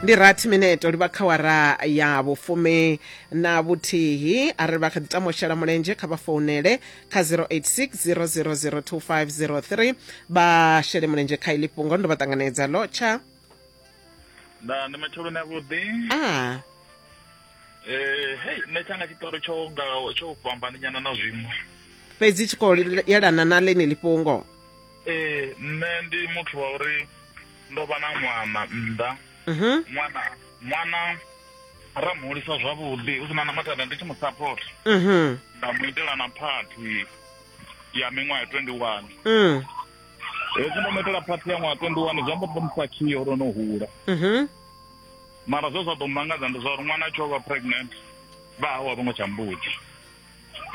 ndi rathi minete livha kha wara ya vhufumi na vhuthihi a ri vha kha ḓi tama u shela mulenzhe kha vha founele kha 0860002503 vha shele mulenzhe kha ili fhungo ndo vha ṱanganedza lo tsha nda ndi matsheloni avhuḓi a Eh, hei nṋe tshanga tshiṱori tsho nga tsho fhambani nyana na zwiṅwe fhedzi tshi khou yelana na ḽeneli fhungo Ee, nṋe ndi muthu wa uri ndo vha na ṅwana nnḓa Mhm. ṅwana ṅwana ra mu hulisa zwavhuḓi hu si na na mathada ndi tshi mu support Mhm. nda mu itela na phathi ya miṅwaha ya 21 Mm. hezwi ndo mu itela phathi ya ṅwaha 21 zwi amba uri ndo mu fakhiya uri o no hula Mhm. mara zwe zwa ḓo mu mangadza ndi zwa uri ṅwana a tshi o vha pregnant vha hawe a vho ngo tsha mbudzi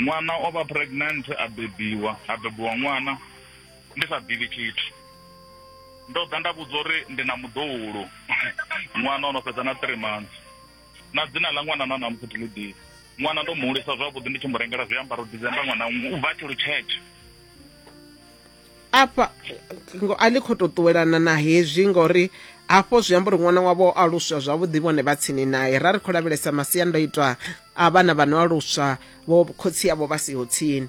ṅwana o vha pregnant a bebiwa a bebiwa ṅwana ndi sa ḓivhi tshithu ndo ḓa nda vhudza uri ndi na muḓoulo ṅwana o no fhedza na three months na dzina ḽa ṅwana na namusi thi ḽi ḓivhi ṅwana ndo mu hulisa zwavhuḓi ndi tshi mu rengela zwiambaro december ṅwana u bva tshi lutshetshe afha ngo a ḽi khou tou ṱuwelana na hezwi ngori hafho zwi amba uri ṅwana wavho o aluswa zwavhuḓi vhone vha tsini naye ra ri khou lavhelesa masiandoitwa a vhana vha no aluswa vho khotsi avho vha siho tsini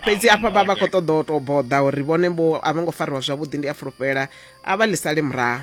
fhedzi afha vha vha khou ṱoḓa u tou boḓa uri vhone vho a vho ngo fariwa zwavhuḓi ndi a fulufhela a vha ḽi sale murahu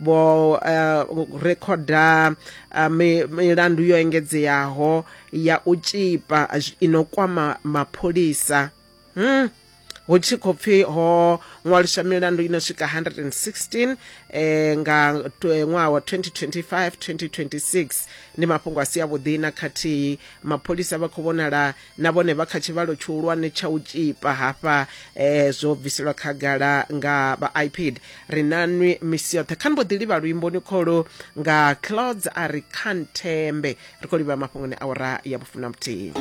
vho uh, rekhoda uh, milandu yo engedzeaho ya u tshipa ino kwama mapholisa hmm. hu tshi khou pfhi ho ṅwaliswa milandu ino swika 116 eh, nga ṅwaha wa 2025 2026 ndi mafhungo a si avhuḓi na khathihi mapholisa vha khou vhonala na vhone vha kha tshivhalo tshihulwane tsha u tshipa hafha eh, zwo bviselwa khagala nga vha ipad ri na nwi misi yoṱhe kha ni mbo ḓi livha luimboni kholo nga clouds a ri khanthembe ri khou livha mafhungoni a ura ya vhufuna muthihi